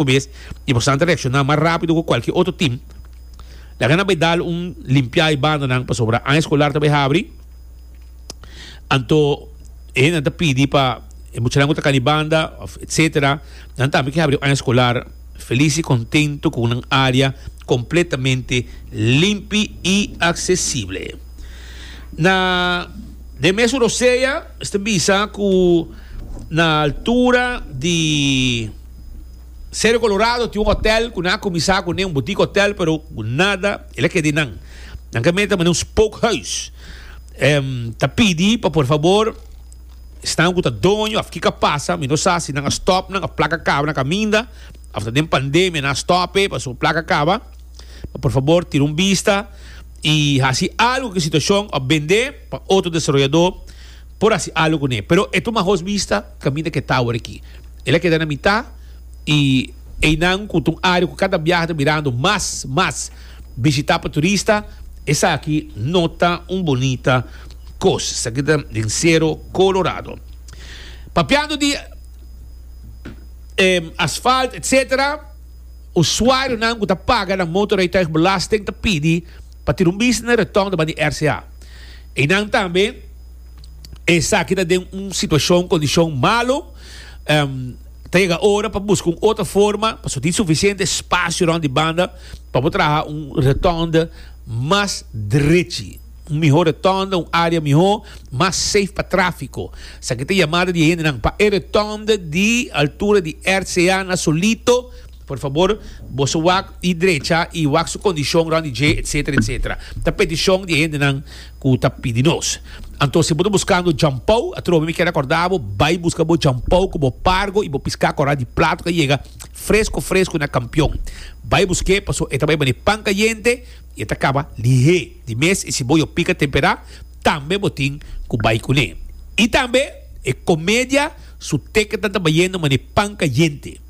mismo bes y por esnan ta reacciona mas rápido cu cualkier otro team. Laga nan bay dal un limpiá e bandanan pasobra aña escolar ta bay habri. Anto e hendenan ta pidi pa e muchanan cu ta cana e banda of etc. Nan tambe ke habri aña escolar feliz y contento cu nan área completamente limpi y accesible. Na den mes su rosea esta bisa cu na altura di. Cerro Colorado tin un hotel cu nan a cuminsa cu ne un boutique hotel pero cu nada el a keda di nan. Nan ke meta manera un spookhuis. Em ta pidi pa por fabor esnan cu ta doño of kico a pasa mi no sa si nan a stop nan of placa a caba na caminda of ta den pandemia nan a stop e pasobra placa a caba pa por fabor tira un bista y haci algo cu e situacion of bende pa otro desaroyador por haci algo cu ne pero e tuma hoos bista. Kaminda ku e tower aki. El a keda na mitá i einan ku ta un área ku kada biaha ta mirando mas, mas bishitá pa turista, esaki no ta un bonita kos. Esaki ta den Sero Kolorado. Papiando di e asfalt etsetera, usuarionan ku ta paga nan motorrijtuigbelasting ta pidi pa tin un bisnis na retòn riba di RCA. Einan tambe. esaki ta den un situacion, condicion malo, em, ta yega ora pa busca un otro forma, pasobra tin suficiente espacio rond di banda, pa bo traha un rotonde mas drechi, un mihor rotonde, un area mihor, mas safe pa trafico. Esaki ta yamada di e hendenan pa e rotonde di altura di RCA Nasolito, por fabor boso wak y drecha y wak su condicion rond di dje, etcetera, etcetera. Ta peticion di e hendenan. cu ta pidi nos. Anto si bo ta buscando jampou, atrobe mi kier acorda bo, bay busca bo jampou cu bo pargo y bo pisca cora di plato ca yega fresco fresco na Campeon. Bay busque paso e ta bay bani pan cayente y e ta caba lihe di mes y si bo yo pica tempera tambe bo tin cu bay cune. Y tambe e comedia su teketan ta bayendo mane pan cayente.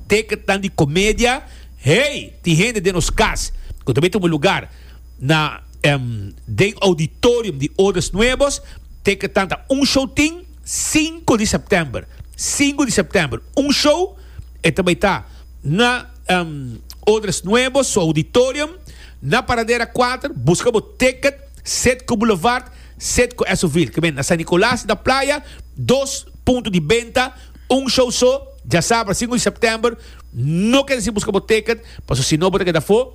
Teketan di comedia hey tin hende den nos cas cu ta bay tumu lugar. na den Auditorium di Odas Nuebos, teketan ta un show tin, sinku di september, sinku di september, un show, e ta bai ta na Odas Nuebos su Auditorium, na Paradera kuater, buska bo teket, set ku Boulevard, set ku Esovil, ke men na San Nicolas di ta Playa, dos punto di benta, un show so, dja sabra, sinku di september, no keda sin buska bo teket, pasobra si no bo ta keda afo.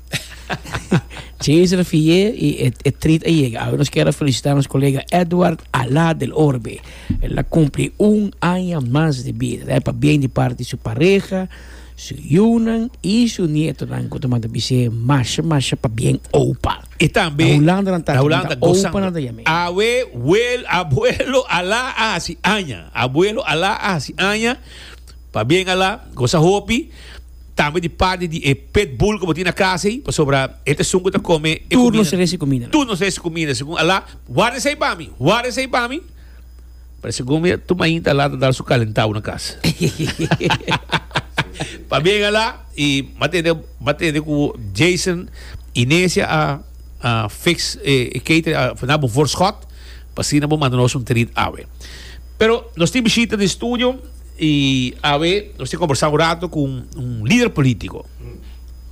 Chin is refié y e e treat a yega. Awe nos kera felicita nos colega Edward Alá del Orbe. El a cumpli un aña mas di bida. Ta e pabien di parti su pareha, su yunan y su nietonan cu ta manda bis'é masha masha pabien opa. Y tambe Na Hulanda nan ta aki, nan ta opa nan ta yam'é. Awe wel abuelo Alá a haci aña. Abuelo Alá a haci aña. Pabien Alá, gosa hopi. tambe di parti di e pit bull ku bo tin na kasa ei, pasobra e ta esun ku ta kome e kumida. Tur nos resi kumida nan. Tur nos resi kumida, segun Allah, warda esei pa mi, warda esei pa mi. Pero segun mi, tur mainta Allah ta dal su kalentau na kasa. Pabia Allah i matende matende ku Jason i Nesia a a fix e catering, a na bo voorschot, pa asina bo manda nos un treat awe. Pero nos tin bishita den studio. Y awe nos tin combersa un rato cu un lider politico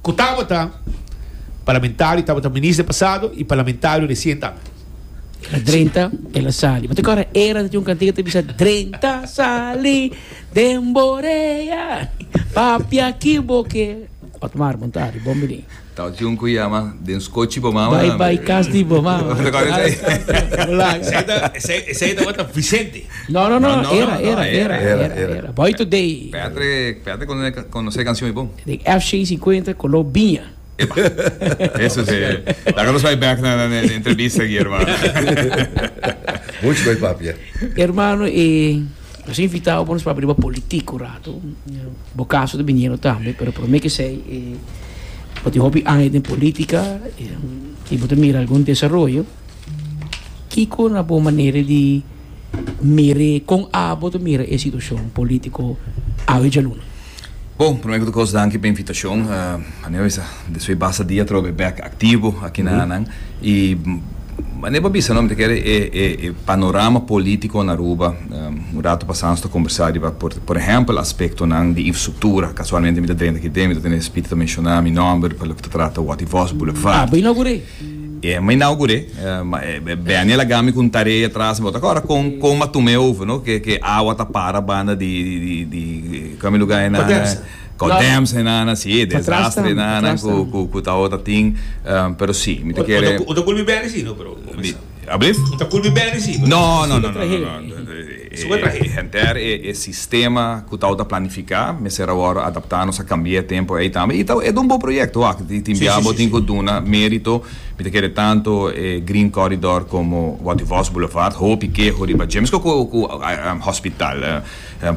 cu tabata parlamentario, tabata minister pasado y parlamentario recientemente. Na drenta el a sali. Bo ta kòrda era ta tin un kantiga ta bisa Drenta sali den Borea, papia ki bo ke. Otmar Muntari, bon bini. Tau tin un cu yama den scochi bo mama. Bai bai cas di bo mama. Esey tabata Vicente? No no no era era era era era boy today. Petre Petre conoce cancion y bon. Den FC cincuenta color biña. Epa eso si e. Taca nos bay back na na entrevista aki hermano. Much bay papia. Hermano e. Nos a invitao pa nos papia riba politik un ratu. Bo kaso ta biniendo tambe, pero prome ke esei e bo tin hopi aña den politika i bo ta mira algun desaroyo, kiko na bo manera di mir'e, kon abo ta mira e situashon politiko awe djaluna? Bo, prome ku tur kos danki pa invitashon. Aneo bisa despues basta dia atroba e bek aktivo aki na Anan. I aneo pa bisa no mi ta kere e e panorama polítiko na Aruba. Un ratu pasá nos ta kombersá riba por ehèmpel aspektonan di infrastruktura. Kasualmente mi ta drenta aki den, mi ta tene e spit di ta menshoná mi nòmber pa loke ta trata Wòt i Vòs bulevard. Ema i nau gure, ma e Beniel a gami ku un tarea tras mi. Bo ta kòrda kon kon mi a tuma e over, no? Ke ke awa ta para banda di di di kua mi lugá ei nan? Kòdèms ei nan, si, e desastre ei nan ku ku ku ta ota tin. Pero si, mi ta kere. Bo ta kulpa e Beni si, no? Pero bo mester. Ablift? Bo ta kulpa e Beni si, pero bo mester. Nò, nò, nò, nò, nò, nò. E henter e sistema ku tau ta planifiká mester awor adaptá, nos a kambiá e tempu ei tambe. I tau e ta un bon proyekto wak, i tin bia bo tin ku duna mérito. Mi ta kere tantu e Green Corridor komo Watie Vos Boulevard, hopi keho riba dje, meskos ku hospital.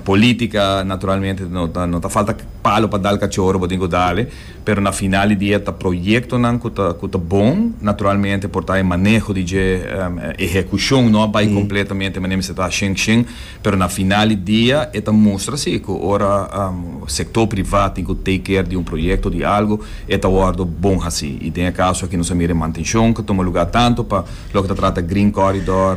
Polítika naturalmente no ta falta palo pa dal kachoro, bo tin ku dal e. Pero na final di dia ta proyectonan cu ta cu ta bon, naturalmente por ta e maneho di dje ehecucion no a bay completamente manera mester ta hashén shén, pero na final di dia e ta mustra si cu ora sector priva tin cu take care di un proyecto di algo e ta wordo bon haci y den e caso aki nos a mira e mantencion cu tuma lugar tanto pa loke ta trata green corridor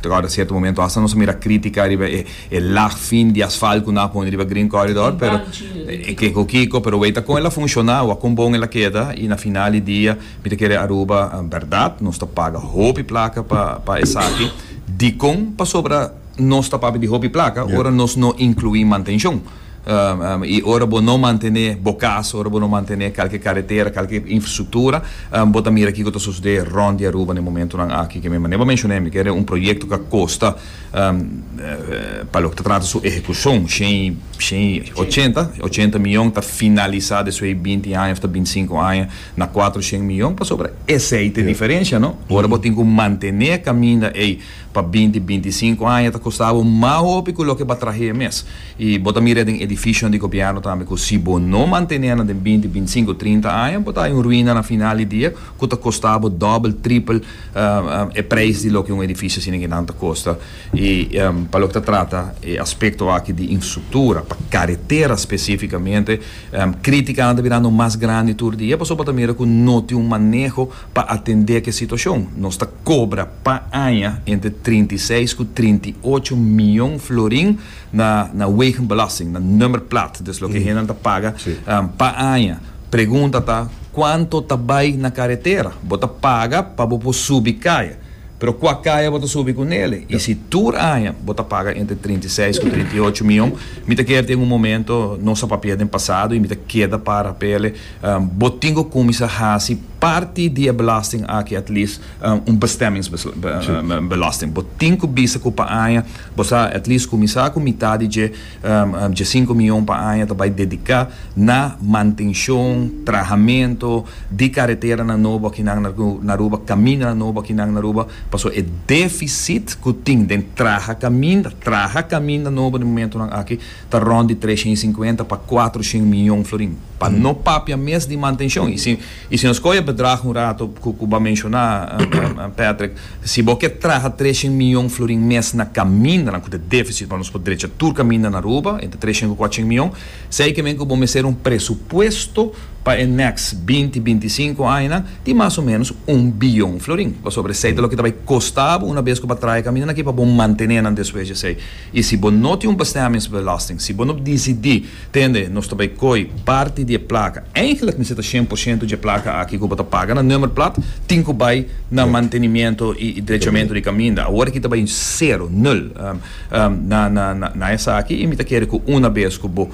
ta acorda cierto momento hasta nos a mira critica riba e E lag fin di asfalt cu nan a pone riba Green Corridor pero e kico kico pero wei ta con el a funciona wak con bon el a keda y na final di dia mi ta kere Aruba berdad nos ta paga hopi placa pa pa esaki dicon pasobra nos ta papia di hopi placa ora nos no inclui mantencion y ora bo no mantene bo cas ora bo no mantene calke caretera calke infrastructura bo ta mira kico ta sucede rond di Aruba na e momentonan aki kico bo a menciona mi kere un proyecto cu a costa Pa loke ta trata su ehekushon, shen, shen i ochenta, ochenta miyon ta finalisá despues di binti aña òf ta binti sinku aña na kuater shen miyon. Pasobra esei ta e diferensha, no? Ora bo tin ku mantené e kaminda ei pa binti, binti sinku aña ta kostá bo mas hopi ku loke bo a trah'é mes. I bo ta mira den edifishionan di gobièrnu tambe ku si bo no mantené nan den binti, binti sinku, trinta aña bo ta haña un ruina na final di dia ku ta kostá bo dòbel, tripel. e prijs di loke un edifisio asina kinan ta kosta i pa loke ta trata e aspekto aki di infrastruktura pa karetera spesifikamente kritika an ta birando mas grandi tur dia pasobra bo ta mira ku no tin un maneho pa atendé ki e situashon nos ta kobra pa aña entre trinta i seis ku trinta i ocho mion florin na na wegenbelasting na nummer plaat des loke hendenan ta paga pa aña. Pregunta ta cuanto ta bay na caretera. Bo ta paga pa bo por subi caya. Pero cua caya bo ta subi cu Nele? Y si tur aña bo ta paga entre trinta i seis cu trinta i ocho mion, mi ta keer tin un momento nos a papia den pasado y mi ta keda pa rapele, bo tin cu cuminsa haci parti di e belasting aki at least un bestemmingsbelasting. Bo tin cu bisa cu pa aña bo sa at least cuminsa cu mitad di dje Dje sinku mion pa aña ta bai dediká na mantenshon, trahamentu di kareteranan nobo aki nan na Aruba, kamindanan nobo aki nan na Aruba, pasobra e defisit ku tin den traha kaminda, traha kaminda nobo den momentunan aki ta rond di treshén i sinkuenta pa kuatrushen mion florin, pa no papia mes di mantenshon. I si nos kohe e bedrag un rato ku ku bo a menshoná, Patrick, si bo ke traha treshen mion florin mes na kamindanan ku ta défisit pa nos por drecha tur kaminda na Aruba, entre treshen ku kuatshen mion, sei kimen ku bo mester un presupuesto pa e nèks binti, binti sinku añanan di mas o ménos un bion florin. Pasobra esei ta loke ta bai kostá bo una bes ku bo a traha e kamindanan aki pa bo mantené nan despues di esei. I si bo no tin un bestèmingsbelasting, si bo no disidí. Tende, nos ta bai koi parti di e plaka. Eigenlik mester ta shen por shento dje plaka aki ku bo ta paga na nummerplaat tin ku bai na mantenimiento i drechamentu di kaminda. Awor aki ta bai sero, nul, na na na esaki i mi ta kere ku una bes ku bo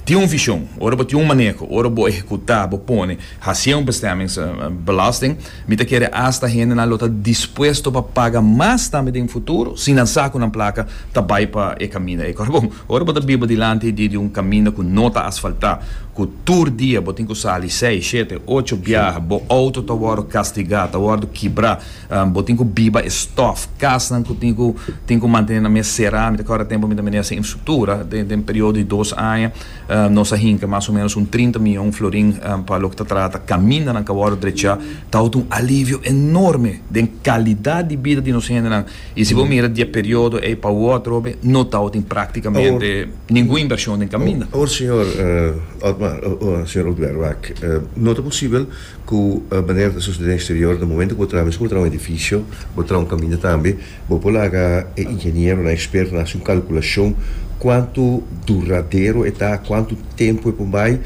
tin un vishon, ora bo tin un maneho, ora bo ehekuta, bo pone, hasié un bestemmings belasting, mi ta kere hasta hendenan lo ta dispuesto pa paga mas tambe den futuro si nan sa ku nan plaka ta bai pa e kaminda ei. Kòrda bon. Ora bo ta biba dilanti di un kaminda ku no ta asfaltá, ku tur dia bo tin ku sali sei, shete, ocho biaha, bo outo ta wòrdu kastigá, ta wòrdu kibrá, bo tin ku biba e stòf, kasnan ku tin ku tin ku mantené nan mes será. Mi ta kòrda tempu mi ta miné esa infrastruktura. Den periodo di dos aña nos a hinka mas o ménos un trinta mion florin pa loke ta trata kamindanan ka wòrdu drechá. Ta wòrdu un alivio enorme den kalidat di bida di nos hendenan Y si bo mira di e periodo ey pa wotro be no ta hotin practicamente ningun inversion den caminda. Awor señor Otmar, señor Ulpiar wak, no ta posibel cu manera ta sucede den exterior na momento cu bo traha, mes cu bo traha un edificio, bo traha un caminda tambe, bo por laga e ingenieronan, expertonan haci un calculacion cuanto duradero e ta, cuanto tempo e por bay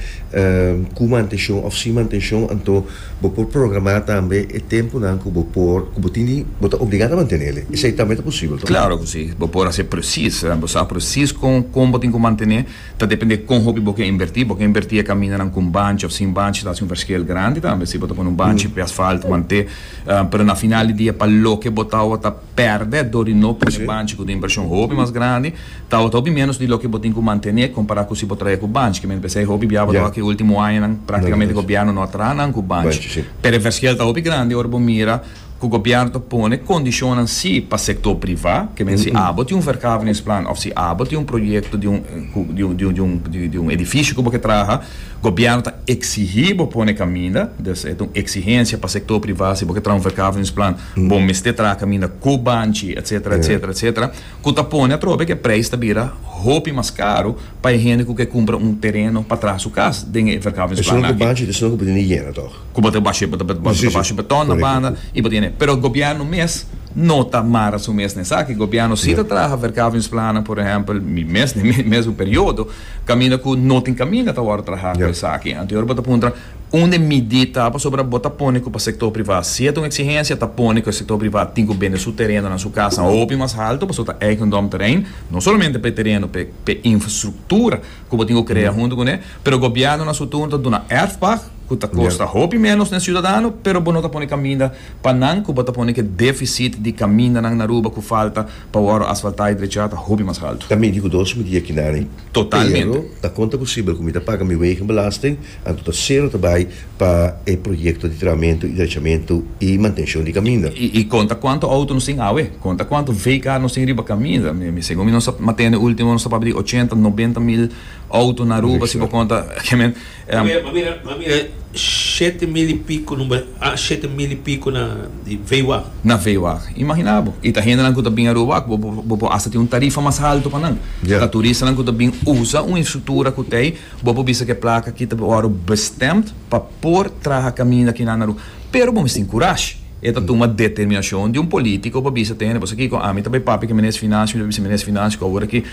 cu mantencion of sin mantencion, anto. Bo por programá tambe e tempunan ku bo por, ku bo tin di, bo ta obligá ta mantené el. Esei tambe ta posibel, to? Klaro ku si. Bo por hasi presis. Bo sa presis kon, kon bo tin ku mantené. Ta dependé kon hopi bo ke invertí. Bo ke invertí e kamindanan kon banchi òf sin banchi, ta hasi un verskil grandi tambe. Si bo ta pone un banchi p'e asfalt mant'é, pero na final di dia pa loke bo ta awa ta. pèrdè dor di no pone banchi ku tin preshon hopi mas grandi, tabata hopi ménos di loke bo tin ku mantené kompará ku si bo traha ku banchi. Kimente p'esei hopi biaba ta wak e último añanan práktikamente gobièrnu no a traha nan ku banchi. Pero e verskiel ta hopi grandi ora bo mira ku gobièrnu ta pone kondishonnan sí pa sektor privá, kimente si abo tin un verkaveningsplan òf si abo tin un proyekto di un ku di un di un di un edifisio ku bo ke traha, gobièrnu ta eksigí bo pone kaminda, des e ta un eksigensia pa sektor privá si bo ke traha un verkaveningsplan. bo mester traha caminda cu banchi etc etc etc cu ta pone atrobe que prijs ta bira hopi mas caro pa e hende cu kier cumpra un tereno pa traha su cas den e verkauwingsplan aki. Esnan cu banchi esnan cu bo tene yena toch. Cu bo ta bashe bo ta bashe beton na banda y bo tene pero gobierno mes no ta mara su mes na esaki gobierno si ta traha verkauwingsplannan por ehempel mi mes den mi mesmo periodo caminda cu no tin caminda ta wordo traha cu esaki anto yor bo ta puntra. Un den midí ta pasobra bo ta pone ku pa sektor privá si e ta un eksigensia ta pone ku e sektor privá tin ku bende su terenonan, su kasanan hopi mas haltu pasobra ta eigendom terrein, no solamente pa e tereno pa e infrastruktura ku bo tin ku krea huntu kuné, pero gobièrnu na su turno ta duna erfpag ku ta kosta hopi ménos den siudadano pero bo no ta pone kaminda pa nan ku bo ta pone ku e defisit di kamindanan na Aruba ku falta pa wòrdu asfaltá i drechá ta hopi mas haltu. Ta mindi ku dos midí akinanin Pero ta konta ku Sibel ku mi ta paga mi wegenbelasting, anto ta sero ta bai pa e proyekto di tramentu i drechamentu i mantenshon di kaminda. I konta kuantu outo nos tin awe. Konta kuantu veikar nos tin riba kaminda. Segun mi nos a tende ultimo nos ta papia di ochenta, nobenta mil outo na Aruba si bo konta. E shete mil i piku number, a shete mil i piku na di veiwag. Na veiwag. Imagina bo, i ta hendenan ku ta bin Aruba wak, bo bo por hasta tin un tarifa mas haltu pa nan. Ya. Ta turistanan ku ta bin usa un infrastruktura ku ta ei, bo por bisa ku e plaka aki ta wòrdu bestemd pa por traha kaminda kinan na Aruba. Pero bo mester tin kurash. E ta tuma determinashon di un polítiko pa bisa te hende, Bon sa kiko, ami ta bai papia ku e Minister di Finansia, mi ta bisa, Minister di Finansia, ku awor aki,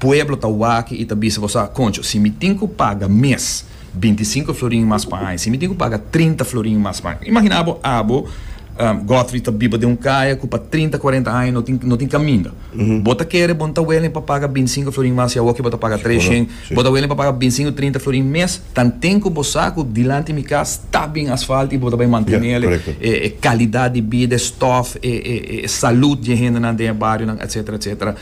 Pueblo ta wak i ta bisa bo sa, Concho, si mi tin ku paga mes binti sinku florin mas pa aña, si mi tin ku paga trinta florin mas pa aña. Imaginá bo abo, Godfrey, ta biba den un kaya ku pa trinta, kuarenta aña no tin no tin kaminda. Bo ta kere bo no ta welen pa paga binti sinku florin mas si awoki bo ta paga tres shen. Bo ta welen pa paga binti sinku, trinta florin mes tanten ku bo sa ku dilanti mi kas ta bin asfalt i bo ta bai mantenel e kalidat di bida, e stòf, e salud di e hendenan den e barionan, etsetera, etsetera.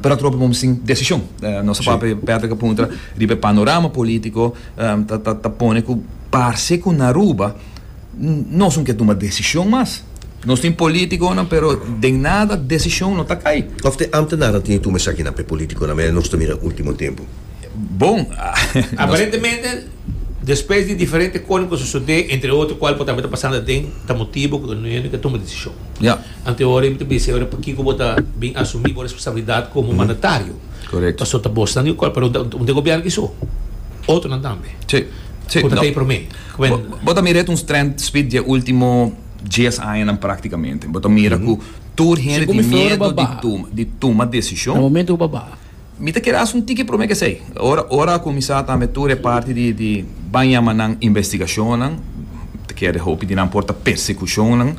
Prat ropi bo sin desishon. Nos papia Patrick a puntra riba e panorama politico ta pone cu parce cu na Aruba nos no ke tuma desishon mas. Nos tin politiconan pero den nada desishon no ta cay. Of te ambtenaar a tin tuma esakinan pa e politiconan mester nos ta mira ultimo tempo? Bon, nos. Aparentemente. Despues di diferente kosnan ku sosodé, entre otro kual bo tambe ta pasando aden, ta motibu ku no yende ka tuma desishon. Ante ora y mi ta bisa ora pakiko bo ta bin asumí bo responsabilidat komo mandatario. Paso ta bosnan di un kual, pero un den gobièrnu kiso, otronan tambe. Ku ta tei promé. Bo ta mira et un strènt, Smit, dje último dies añanan práktikamente. Bo ta mira ku tur hende tin miedu di tuma desishon. Mi ta kere haci un tiki prome kesey. Ora ora a cuminsa tambe tur e parti di di baña ma nan investigacionnan, mi ta kere hopi di nan por ta persecucionnan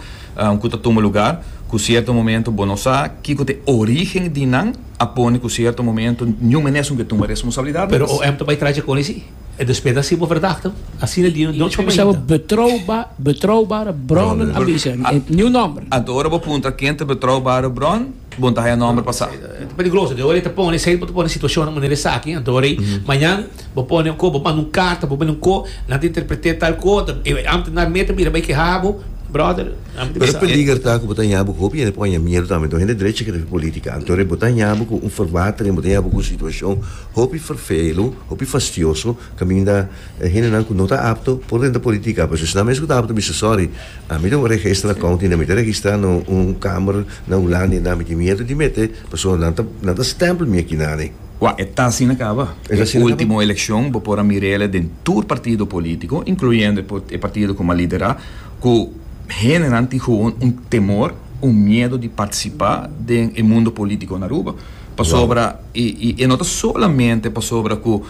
cu ta tuma lugar cu cierto momento bo no sa kico ta e origen di nan a pone cu cierto momento niun mene esun ke tuma responsabilidad. Pero OM ta bay tracha con isi e despues ta haci bo verdachtig asina di nochi pa bay hinter. Betrouwba betrouwbare bronnen a bisa. Niun nomber. Anto ora bo puntra ken ta betrouwbare bron. Bon ta haya nomber pa sa. E ta peligroso dor e ta pone esei bo ta pone situacionnan manera esaki dor ei mañan bo pone un ko bo manda un carta bo bini un ko nan ta interprete tal ko antes nan mete bira bay keha bo brother nan Pero e peliger ta ku bo ta ña bo hopi hende por aña miedu tambe to hende drechi kere fi politica anto re bo ta ña bo ku un verwatering bo ta ña bo ku un situacion hopi vervelu hopi fastioso kaminda E hendenan ku no ta apto por den ta politika, pues esnan mes ku ta apto bisa sòri, ami ta un regestra kount i nan mi ta registrá na un kamer na Hulanda i nan mi tin miedu di mete pasobra nan ta nan ta stèmpel mi akinani. Wak, e ta asina kaba. E último elekshon bo por a mir'el den tur partido polítiko, inkluyendo e partido ku mi a liderá, ku hendenan tin gewoon un temor, un miedu di partisipá den e mundo polítiko na Aruba pasobra i e no ta solamente pasobra ku.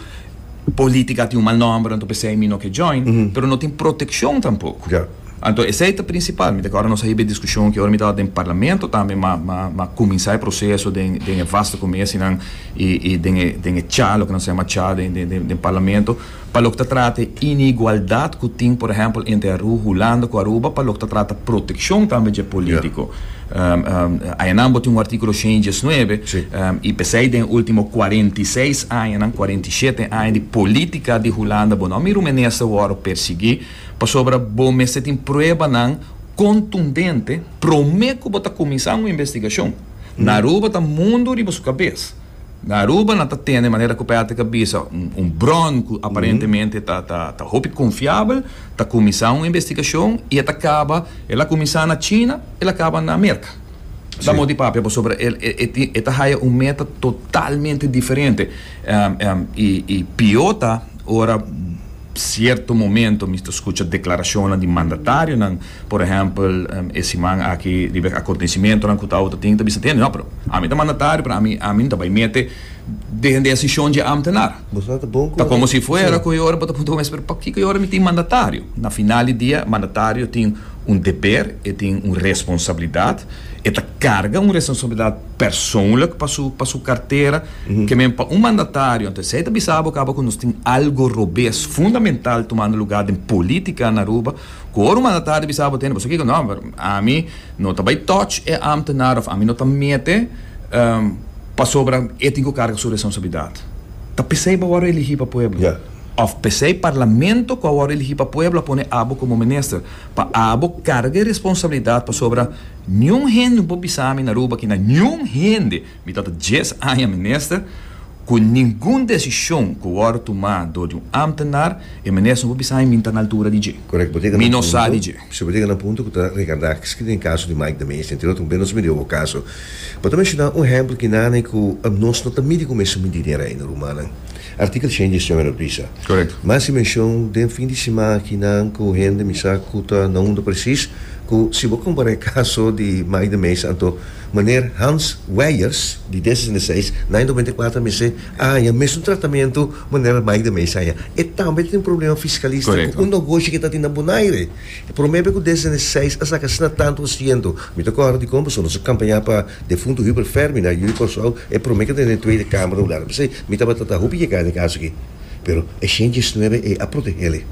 Politica tin un mal nomber anto pesey mi no ke join pero no tin proteccion tampoco anto esey ta principal mi ta kor nos a hiba e discusion aki ora mi tabata den parlamento tambe ma ma cuminsa e proceso den den e vaste comesi nan y y den e den e cha loke nos ta yama cha den den den parlamento pa loke ta trata e inigualdad cu tin por ehempel entre Aruba Hulanda cu Aruba pa loke ta trata proteccion tambe dje politico. Añanan bo tin un artíkulo shen i diesnuebe i p'esei den último kuarenta i seis añanan, kuarenta i shete aña di polítika di Hulanda bo no mira un minister wòrdu persiguí pasobra bo mester tin pruebanan kontundente promé ku bo ta kuminsá un investigashon. Na Aruba ta mundu riba su kabes. Na Aruba nan ta tende manera ku Patrick a bisa un bron ku aparentemente ta hopi konfiabel, ta kuminsá un investigashon i e ta kaba, el a kuminsá na China, el a kaba na Merka. Ta mos di papia pasobra el e ta haya un meta totalmente diferente. I pió ta ora sierto momento mi ta skucha deklarashonnan di mandatarionan. Por ehèmpel, e siman aki riba e akontesimentonan ku Tao Te Ting ta bisa tende, no, pero ami ta mandatario, pero ami ami no ta bai mete den desishon dje ámtenar. Ta komo si fuera ku e ora bo ta puntra ku mes, pero pakiko e ora mi tin mandatario? Na final di dia, mandatario tin un deber, e tin un responsabilidat, e ta karga un responsabilidat persoonlijk pa su pa su kartera, ke men pa un mandatario, anto esei ta bisa bo kaba ku nos tin algo robes fundamental tumando lugá den polítika na Aruba, Ku ora manda tardi bisa bo tende bo sukiko no ami no ta bai touch e amtenar of ami no ta mete pasobra e tin ku karga su resonsablidat. Ta p'esei bo a wòrdu eligí pa pueblo of p'esei parlamento ku a wòrdu eligí pa pueblo a pone abo komo minister pa abo karga e responsablidat pasobra niun hende no por bisa mi na Aruba ke na niun hende Mi ta ta dies aña minister, ku ningun desishon ku wòrdu tumá dor di un ámtenar, e minister no por bisa mi mi no ta na altura di dje. Correct, bo teka na punto. Mi no sa di dje. Si, bo teka na punto ku ta rekardáks kende den kaso di Mike Dameish, den Tiro Tumbé nos miri obo kaso. Bo ta menshoná un ehèmpel kinane ku nos no ta miri ku mester mindi den rei na rumannan. Artikel shen gestión a reprisa. Correct. Mas si menshon den fin di sima aki nan ku hende mi sa ku ta na unda presis ku si bo kompará e kaso di Mike Dameish anto Meneer Hans Wijers, di D zesende i seis, na e noventa i kuater mi sê, a haña mesun tratamentu meneer Mike de Meijs haña. E tambe ta tin un problema fiskalista ku un nogoshi ku e ta tin na Bonaire. Promé be ku D zesende i seis a saka asina tantu por sientu. Mi ta kòrda di kon pasobra nos a kampañá pa defuntu Hubert Fermi na Ui Kòrsou, e promé ku ta den e Tweede Kamer un lado. P'esei mi tabata ta hopi yegá den e kaso aki. Pero e Shen diesnuebe ei a proteh'é.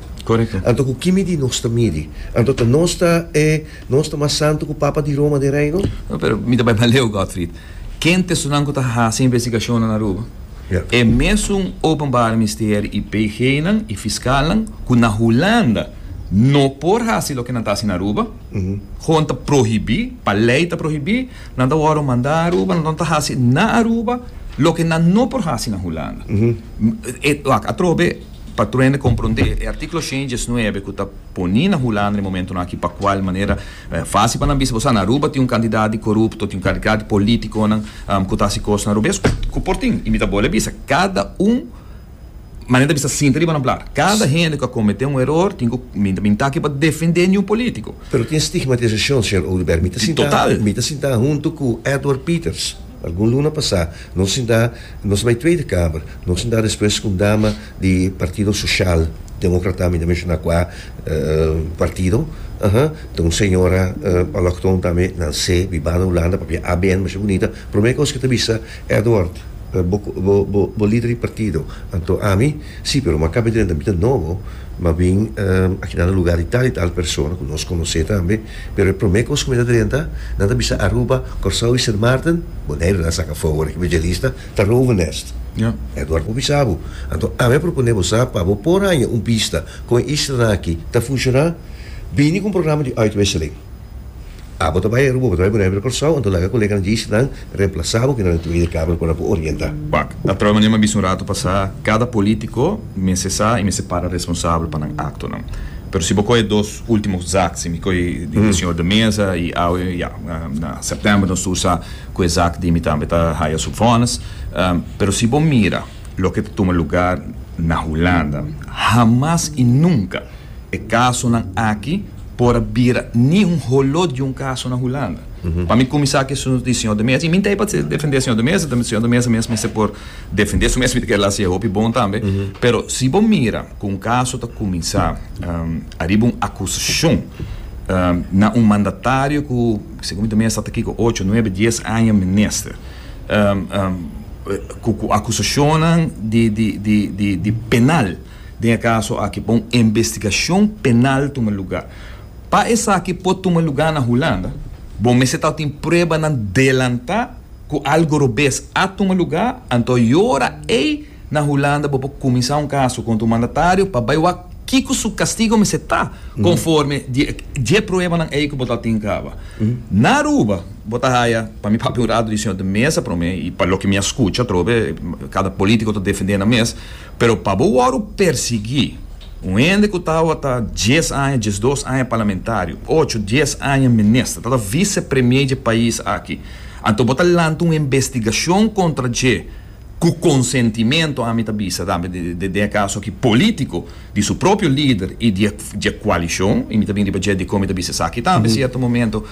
Anto ku ki midi nos ta midi? Anto ta nos ta e. Nos ta mas santu ku Papa di Roma den Reino? No, pero mi ta bai Maleu, Gottfried. Ken ta esunanku ta hasi investigashonnan na Aruba? E mesun Openbare Misteri i PGnan i fiskalnan ku na Hulanda no por hasi loke nan ta hasi na Aruba, hoon ta prohibí, pa lei ta prohibí, nan ta wòrdu mandá Aruba, nan no ta hasi na Aruba loke nan no por hasi na Hulanda. Wak, atrobe. Patruende komprondé e artíkulo shen i diesnuebe ku ta poní na Hulanda e momentunan aki pa kual manera fásil pa nan bisa bo sa na Aruba tin un kantidat di korupto, tin un kantidat di polítikonan ku ta hasi kosnan robes ku por tin. I mi ta bole a bisa, kada un manera ta bisa sinta riba nan plat. Kada hende ku a kometé un eror tin ku, mi ta bin ta aki pa defendé niun polítiko. Pero tin stigmatisashon, señor Oduber. Mi ta sinta, mi ta sinta huntu ku Edward Peters. Algun luna pasá nos sinta nos bai Tweede Kamer, nos sinta despues ku un dama di Partido Sosial Demokrata, mi ta menshoná kua partido, aha, ta un señora aloktón tambe, nansé, bibá na Hulanda, papia ABN, masha bunita, promé kos ku ta bisa, Edward, bo lider di partido? Anto ami, sí, pero mi a kaba di renta, mi ta nobo. Ma bin, akinan na lugá di tal i tal persona ku nos konosé tambe, pero e promé kos ku mi ta drenta, nan ta bisa Aruba, Kòrsou i Sint Maarten? Boneiru nan saka fogo na Evangelista ta Rovenest. Edward por bisa bo. Anto ami a proponé bo sa pa bo por haña un bista kon e islanan akí ta funshoná, bini ku un programa di uitwisseling. Abo ta bai Aruba, bo ta bai Bonaire Curaçao, anto laga coleganan JC nan reemplasa bo kende nan di Tweede Kamer cu nan por orienta. Bak, ta troe manera m'a bisa un rato pasa, cada politico mester sa y mester para responsabel pa nan actonan. Pero si bo coge dos ultimo zaak, si mi coge di e señor de Meza y awe ya, na September nos tur sa cu e zaak di mi tambe ta haya su vonnis. Pero si bo mira loke ta tuma lugar na Hulanda, hamas y nunca. E kasonan aki por a bira ni un holó di un kaso na Hulanda. Pa mi kuminsá ku esun di señor de Mesa, i mi no ta ei pa defendé señor de Mesa, tambe señor de Mesa mes mester por defendé su mes, mi ta kere la si e hopi bon tambe, pero si bo mira ku un kaso ta kuminsá ariba un akusashon na un mandatario ku segun mi ta mira sa ta kiko ocho, nuebe, dies aña minister ku akusashonnan di penal. Den e kaso aki pa un investigashon penal tuma lugá. Pa esaki por tuma lugá na Hulanda, bo mester ta tin pruebanan delantá ku algu robes a tuma lugá, anto e ora ei na Hulanda bo por kuminsá un kaso kontra un mandatario pa bai wak kiko su kastigo mester ta konforme di e dje pruebanan ei ku bo ta tin kaba. Na Aruba bo ta haya, pa mi papia un ratu di señor di mesa promé i pa loke mi a skucha atrobe kada polítiko ta defendé nan mes, Pero pa bo wòru persiguí un hende ku tabata dies aña, diesdos aña parlamentario, ocho, dies aña minister, tabata vicepremier dje pais aki, anto bo ta lanta un investigashon kontra dje ku konsentimentu, ami ta bisa tambe den e kaso aki, polítiko di su propio lider i di dje kualishon, i mi ta bini riba dje dikon mi ta bisa esaki tambe sierto momento,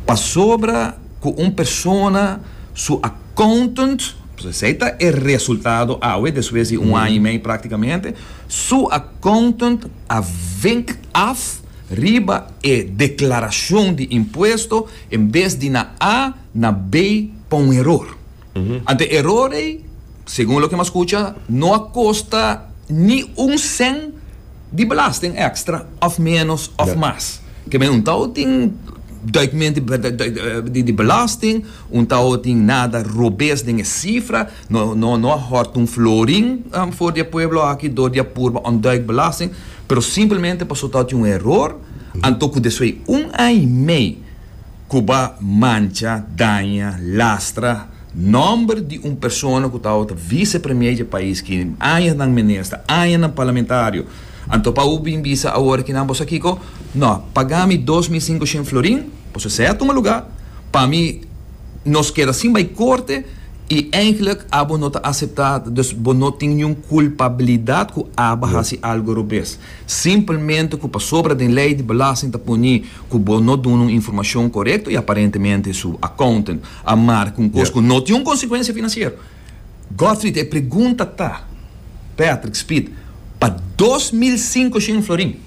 pasobra. ku un persona su accountant, pasobra esei ta e resultado awe despues di un aña i mei práktikamente, su accountant a vink af riba e deklarashon di impuesto, en bes di na A na B pa un eror. Ante e eror ei, segun loke hemos scucha, no a costa ni un cent di belasting extra of menos of mas. Ke men un tao tin duidmente di belasting, un tao tin nada robes den e cifra, no a hort un florin for di e pueblo aki door di a purba ontduik belasting, pero simplemente pasobra tao tin un eror, anto cu despues un aña y mei. ku ba mancha, daña, lastra nòmber di un persona ku tabata ta vise premier dje pais ki añanan minister, añanan parlamentario. Anto pa u bin bisa awor aki nan bo sa kiko? No, paga mi dos mil sinkushen florin, bo sa sèt tuma lugá, pa mi nos keda sin bai korte i eindelijk abo no ta aseptá, dus bo no tin niun kulpabilidat ku aba hasi algu robes. Simplemente cu pasobra den ley di belasting ta poni cu bo no duna un informacion corecto y aparentemente su accountant a marca un cos cu no tin un consecuencia financiero. Godfried, e pregunta ta, Patrick, Speed, pa dos mil cinco shin florin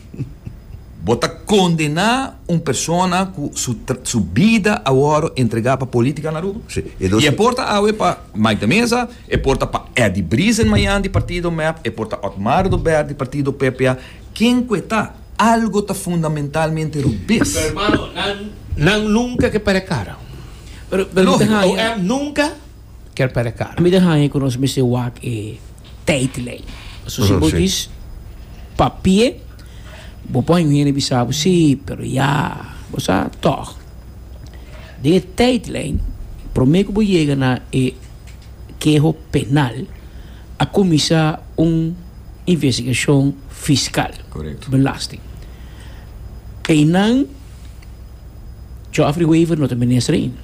bo ta condena un persona cu su bida a worde entrega pa politica na Aruba? Y e porta awe pa. Mike Meza, e por ta pa Eddy Brisen Mayan di partido mep, e por ta Otmar Dobert di partido PPA, ken ku e ta, algo ta fundamentalmente rubes. Pero mano, nan, nan nunka ke pere kara. Pero, pero mi ta haña. OM nunka ker pere kara. Mi ta haña ku nos mester wak e. Tijdlijn. So si bo dis papie, bo por hinga a bisa bo si, pero ya bo sa tog. Den e tijdlijn, prome ku bo yega na e keho penal, a kuminsá un investigashon fiskal, belasting. Einan Geoffrey Wever no ta minister ain.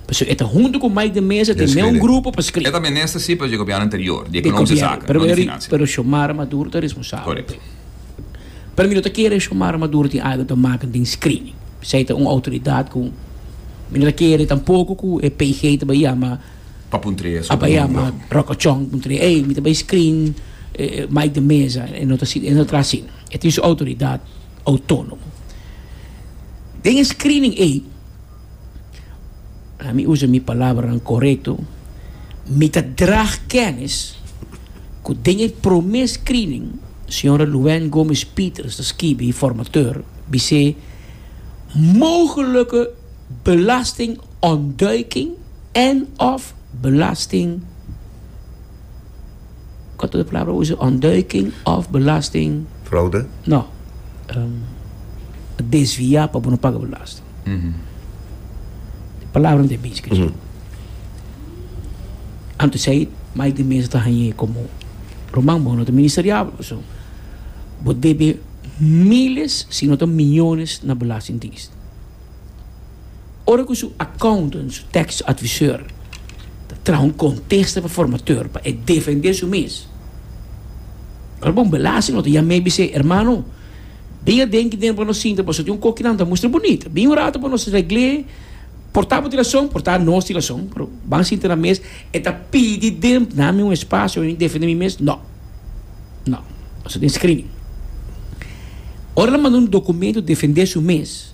Pasobra e ta huntu ku Mike de Meza, tin neo un grupo pa skri. E ta minister si pero di e gobièrnu anterior, di ekonomische zaken, no di finansia. Pero Xiomara Maduro ta responsabel. Korekto. Pero mi no ta kere Xiomara Maduro tin algu ta makan den screening. Bisai ta un outoridat ku mi no ta kere tampoko ku e PG ta bai yama, Pa puntr'é su opinion, loke. a bai yama Rokochon pa puntr'é, ey, mi ta bai screen Mike de Meza. E no ta asina, e no ta traha asina. E tin su outoridat outónomo. Den e screening ey. Laat me usa mi palabranan correcto, mi ta draag kennis cu den e prome screening Sra. Luanne Gomes Pieters ta skibi e formateur bisé mogelijke belastingontduiking en of belasting Kort otro palabra usa ontduiking of belasting. Fraude? No, desvia pa bo no paga belasting. Di palabra di mens ke chon. Anto esei mai di mens ta hañ'é komo ruman, bo no ta ministeriabel pasobra bo debe miles si no ta miyones na belastingdienst. Ora ku su accountant, su tax advisor ta traha un kontesta pa formateur pa e defendé su mes, ora bo un belasting no ta yam'é i bisa, Hermano, Bin a denki den pa nos sinta pasobra tin un koki nan ta mustra bunita. Bin un ratu pa nos regl'é, portá bo di rason, portá nos di rason, pero ban sinta na mes, e ta pidi den, na mi un espasio pa mi defendé mi mes, no, no, nos ta tin screening. Ora nan manda un dokumento defendé su mes.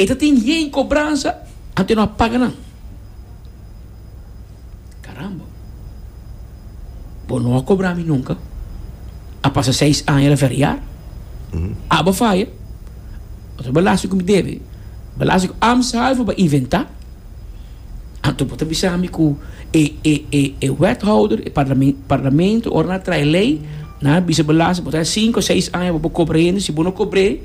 E ta tin hei kobransa anto e no a paga nan. Karamba! Bo no a kobra mi nunka. A pasa seis aña la feriá. Abo faya. Otro belasting ku mi debe. Belasting ku am sabi for pa inventá. Anto bo ta bisa mi ku e, e, e, e wethouder, e parlamen, parlamento ora nan a traha e lei, nan a bisa belasting bo ta haña sinku, seis aña bo por kobra hende. Si bo no kobr'é.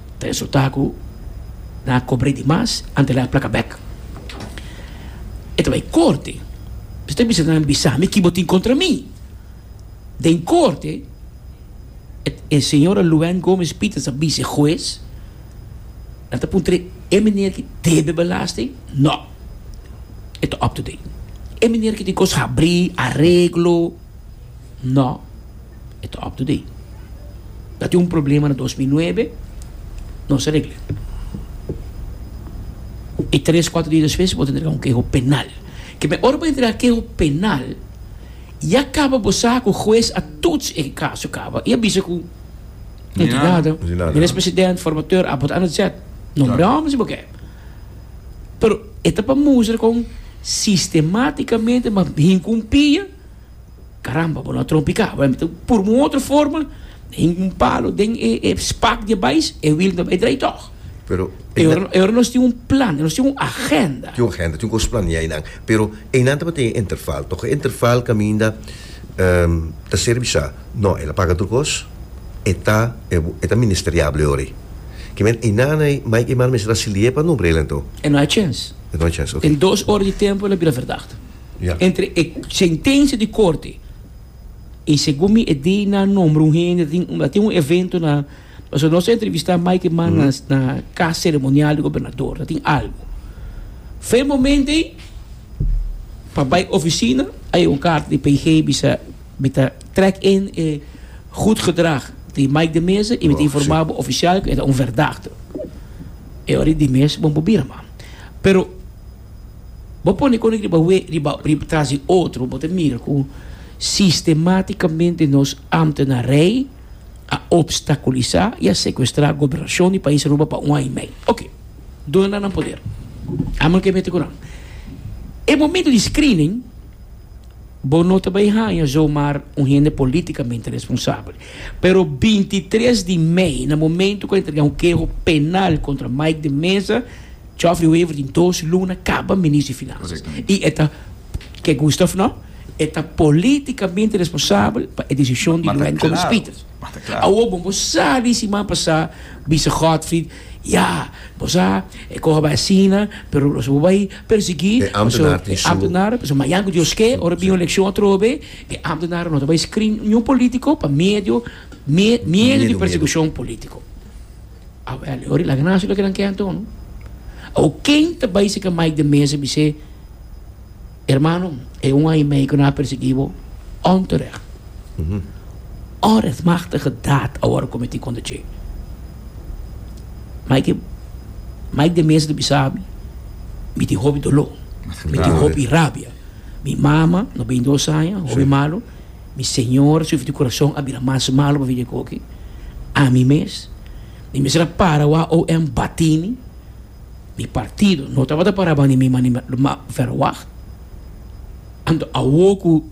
Ta insultá ku nan a kobr'é di mas antes nan a plaka bèk. E ta bai korte. Esei ta bisa nan, Bisa mi kibo tin kontra mi. Den korte, e señora Luann Gómez Peters a bisa e hues, Nan ta puntr'é, E meneer ki debe belasting? Nò. E ta up to date. E meneer ki tin kos habrí, areglo? Nò. E ta up to date. Ta tin un problema na dos mil nuebe, nos a regl'e. I tres, kuater dia despues bo ta entrega un keho penal. Ke me ora bo entrega keho penal, ya kaba bo sa ku hues a tuts e kaso kaba i a bisa ku entidadnan, minis president, formateur, abo ta analise'e. Nombre hòmber si bo ke. Pero e ta pa mustra kon sistematikamente bo hinkumpia. Caramba, bo no a trompica. Bo a mete pur un otro forma, hinca un palo den e, e spak di e bais, e wiel ta bay draai tog. Pero E ora, e ora nos tin un plan, nos tin un agenda. tin un agenda, tin cos planea einan. Pero einan tabata den e interval. Tog e interval caminda ta ser bisa, no, el a paga otro cos, e ta, e ta ministeriable ora. Ki men einan ei, Mike Eman a mester a siliee pa nombra el anto. E no hay chens. E no hay chens, ok. Den dos ora di tempo el a bira verdacht. Entre e sentencia di corte y segun mi e day nan nombra un hende ta tin ta tin un evento na pasobra nos a entrevista mai ke man na na cas ceremonial di gobernador ta tin algo fe momento ey pa bay oficina hay un carta di PG bisa mi ta track in e goed gedrag di Mike de Meza y mi ta informa bo oficial ke e ta un verdachte e ora di mes bo por bira man pero Bo pone konik riba we riba riba tras di otro bo ta mira ku sistematikamente nos amtenarei a opstakulisá i a sekuestrá gobernashon di pais Aruba pa un aña i mei. Oke, duna nan nan poder. Amo no ke mete ku nan. E momento di screening bo no ta bai haña zomaar un hende polítikamente responsabel. Pero bintitres di mei na momento ku a entregá un keho penal kontra Mike de Meza, Geoffrey Wever tin dos luna kaba minis di Finansa i e ta, ke Gustav no, e ta politikamente responsabel pa e desishon di Louwyn Gomez Pieter. Awor bon, bo sa di siman pasá bisa Godfried, ya, bo sa, e koha bai asina, pero los bo bai persigui, paso e ámtenaren, paso mañan ku Dios ke, ora bin un elekshon atrobe, e ámtenaren no ta bai skrin niun politiko pa medio, miedu di persekushon politiko. Ori laga nan hasi loke nan ke anto no. Awor ken ta bai serka Mike den mesa bis'é, Hermano, e un aña i mei ku nan a persegui bo onterecht. Onrechtmachtige daad awor a kometí kontra dje. Mike Mike den mesa ta bisa mi, Mi tin hopi doló, mi tin hopi rabia. Mi mama, no beintidos aña, hopi malu. Mi Señor, su corazón a bira mas malo pa bini coke ami mes. Mi mester a para wak OM batí mi. Mi partido no tabata para bani mi mani ma verwacht. Anto awor cu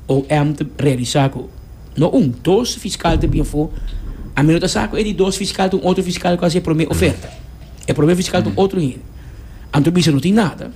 OM ta realisa cu no un, dos fiscal ta bini afo, ami no ta sa cu e di dos fiscal ta un otro fiscal cu a hasi e prome oferta. E prome fiscal ta un otro hende. Anto bisa no tin nada.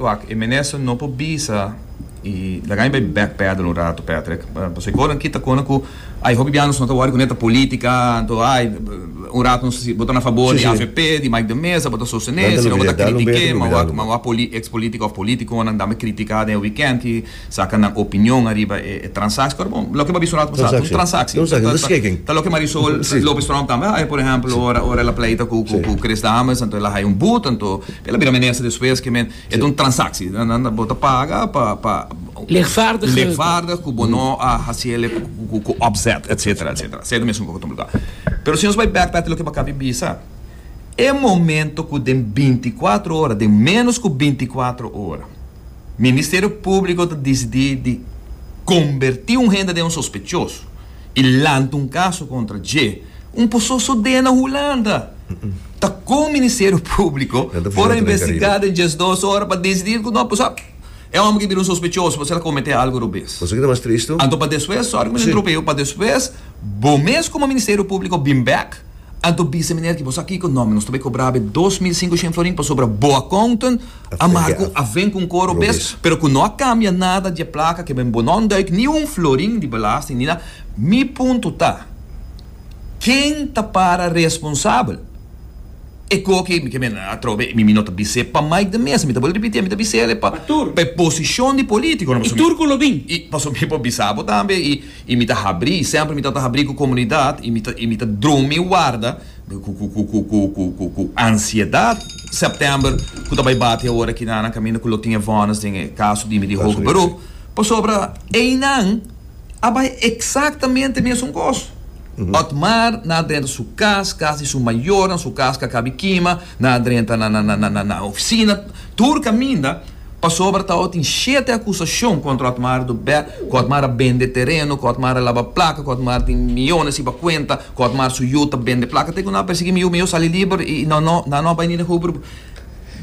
Wak, e minister no por bisa y laga mi bay back pedal un rato Patrick, pasobra e conan kita conan cu ay hopi biahanan nos no ta worry cu neta politica, anto ay un rato nos ta si bo ta na fabor di avp, di Mike de Meza bo ta sostene, si no bo ta critique, ma wak, ma wak ex politica of politiconan dame critica den e weekend ki. Saca nan opinion ariba e transacci. Pero bon, loke bo a bisa un rato pasado, ta un transacci. Ta loke Marisol Lopez Strong tambe a haya, por ehempel, ora, ora el a pleita cu, cu, cu Chris Dames, anto el a haya un boet, anto el a bira minister despues, ke men, e ta un transacci. Bo ta paga pa, pa, Legvaardig. Legvaardig cu bo no a haci ele cu, cu opzet, et cetera, et cetera. Esei ta mesun cu ta lugar. Pero si nos bai bek p'e loke bo acabi bisa, e momento cu den binti cuatro ora, den menos cu binti cuatro ora, Ministerio Públiko ta disidí di kombertí un hende den un sospechoso i lanta un kaso kontra dje, un poso sodé na Hulanda. Ta kon Ministerio Públiko por a investigá den djes dos ora pa disidí ku no, pasobra e hòmber ki bira un sospechoso pasobra el a kometé algu robes. Anto pa despues, sòri ku mi ta interumpí, pa despues bo mes komo Ministerio Públiko bin bèk Anto bisa miner ki bo sa kiko nòmber, nos ta bai kobra be dos mil sinku shen florin pasobra bo akountant a marku a ven ku un koro bes, pero ku no a kambia nada di e plaka ke ben bo no nduik ni un florin di belasting ni na. Mi punto ta, Ken ta para responsabel? E ko ke ke mi a troba e mi mi no ta bis'é pa Mike de Meza, mi ta bali ripitié mi ta bis'é ale pa pa e posishon di politiko nomás. I tur ku lo bin. I pasobra mi por bisa bo tambe i. I mi ta habrí, sèmpri mi ta ta habrí ku komunidat i mi ta i mi ta drumi warda ku ku ku ku ku ku ku ku ansiedat. Sèptèmber ku ta bai bati awor aki nan a kaminda ku lo tin e vònis den e kaso di mi di hoge beroep pasobra einan a bai eksaktamente mesun kos. Otmar na drenta su kas, kas di su mayornan, su kas ka kabi kima, Nan a drenta na ofisina tur kaminda pasobra Tao tin shete akusashon kontra Otmar do Bè, ku Otmar a bende tereno, ku Otmar a laba plaka, ku Otmar tin miyones riba kuenta, ku Otmar su yu ta bende plaka. Te ku nan a persiguí mi yu, mi yu sali liber i nan no a bai ni den hopi por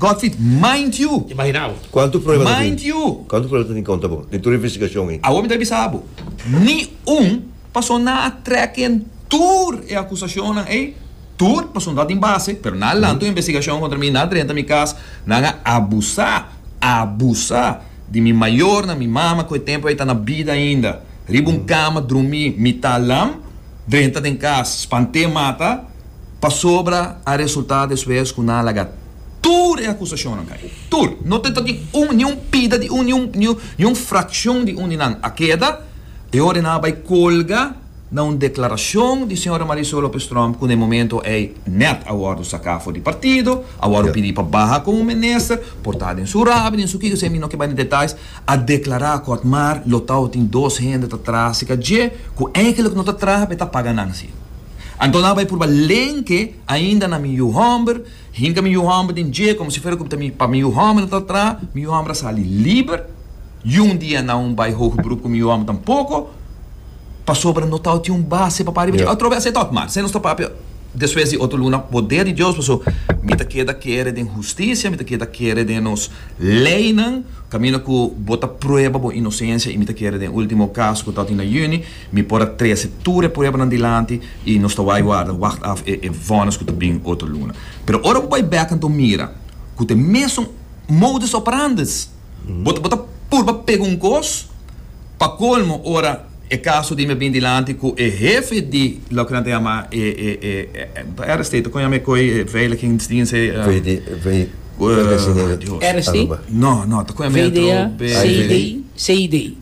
Godfried, mind you! Imagina bo. Kuantu prueba ta tin? Mind you! Kuantu prueba ta tin kontra bo den tur investigasyon ei? Awor mi ta bisa bo, ni un. Pasobra nan a trek yen tur e acusacionnan ey, tur, pasobra no a tin base, pero nan a lanta un investigacion contra mi, nan a drenta mi cas, nan a abusa, abusa di mi mayornan, mi mama cu e tempo ey ta na bida ainda, riba un cama drumi mita lam, drenta den cas, spante mata, pasobra a resulta despues cu nan a laga tur e acusacionnan cay, tur, no ta tin un, ni un pida di un, ni un, ni un fraccion di un di nan a keda. E ora nan a bai colga na un declaracion di Sra. Marisol Lopez-Tromp cu na e momento ey net a wordo saca for di partido, a wordo pidi pa baha como minister, por ta den su rabia, den su kikosa, mi no ke bai na detalles, a declara akkoord, maar lo tau tin dos hende ta traha cerca dje cu eigenlijk no ta traha, pero e ta paga nan si. Anto nan a bai purba lenke ainda na mi yu homber, Hinka mi yu hòmber den dje, komo si fuera ku ta pa mi yu hòmber nan ta tra. Mi yu hòmber a sali liber. Yun dia nan un bai hoge berup ku mi yu hòmber tampoko, pasobra no tabata tin un base papá riba dje. Atrobe a setat mal. Esei nos ta papia despues di otro luna poder di Dios, paso mi ta keda kere den hustisia, mi ta keda kere den nos leinan, kaminda ku bo ta prueba bo inosencia i mi ta kere den ultimo kas ku tabata na yüni. Mi por a trese tur e pruebanan dilanti i nos ta wai warda, wacht af e e vònes ku ta bini otro luna. Pero ora bo bai bèk kantu bo mira ku ta e mesun modus operandes, bo ta bo ta purba pega un kos. Pa kolmo ora e kaso di mi a bini dilanti ku e hefe di loke nan ta yama e e e Air State, kon yama e koi e veiligingsdiens e Air State? No no ta kon yama e otro be. CID.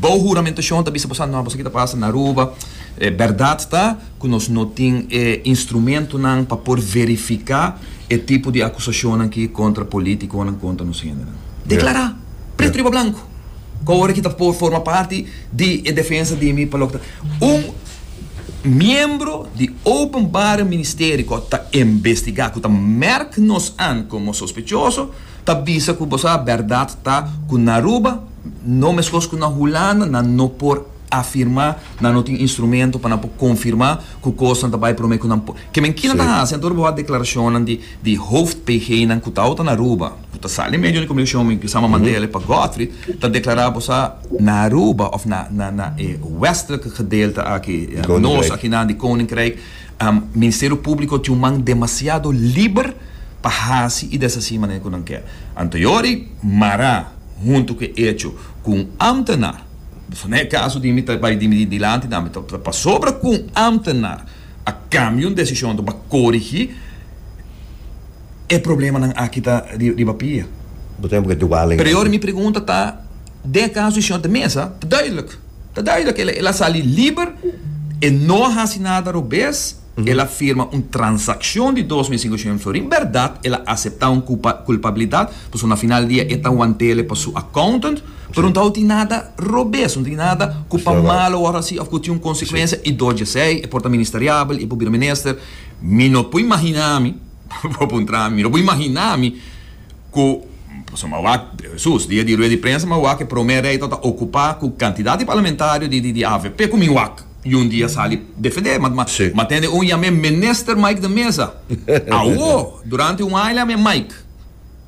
Bou huramentashon ta bisa bo sa nòmber, esaki ta pasa na Aruba. E bèrdat ta ku nos no tin e instrumentunan pa por verifiká e tipo di akusashonnan ki kontra polítikonan, kontra nos hendenan. Deklará pretu riba blanku ku awor aki ta por forma parti di e defensa di mi pa loke ta un miembro di Openbare Ministerie ku ta investigá, ku ta mèrk nos an komo sospechoso, ta bisa ku bo sa bèrdat ta ku na Aruba, No meskos ku na Hulanda, nan no por afirmá, nan no tin instrumento pa nan por konfirmá ku kosnan ta bai promé ku nan por. Ke men kila ta hasi, anto bo hasi deklarashonnan di di hoof-PGnan ku ta outa na Aruba, ku ta sali medio di komunikashon, mi pensá Mandela pa Godfried, ta deklará bo sa na Aruba òf na na na e westelike gedeelte aki, nos akinan di Koninkryk, Ministerio Públiko tin un man demasiado liber pa hasi i deshací manera ku nan ke. Anto yori, mará huntu ku e echo ku un ámtenar, pasobra na e kaso di mi ta bai dimití dilanti na mi, ta pasobra ku un ámtenar a kambia un desishon anto bo a korigí e problemanan aki ta riba pia. Bo ta hende ku ta dual den. Pero yori mi pregunta ta. Den e kaso di señor de Meza ta duidelijk, ta duidelijk el, el a sali liber, e no a hasi nada robes, el a firma un transakshon di dos mil sinkoshon florin, bèrdat el a aseptá un kulpabilidat, pasobra na final di dia e ta wantele pa su accountant, pero no ta wou tin nada robes, no tin nada ku pa malo wòrdu hasi òf ku tin un konsekwensia i dor dj'esei, e por ta ministeriabel, e por bira minister, mi no por imaginá mi, mi no por imaginá mi. ku pasobra mawak sus dia di rueda di prensa mawak e prome rei ta ta okupa ku kantidat di parlamentario di di avp ku miwak i un dia sali defende ma ma tende un yam'é Minister Mike den mesa awo durante un aña yam'é Mike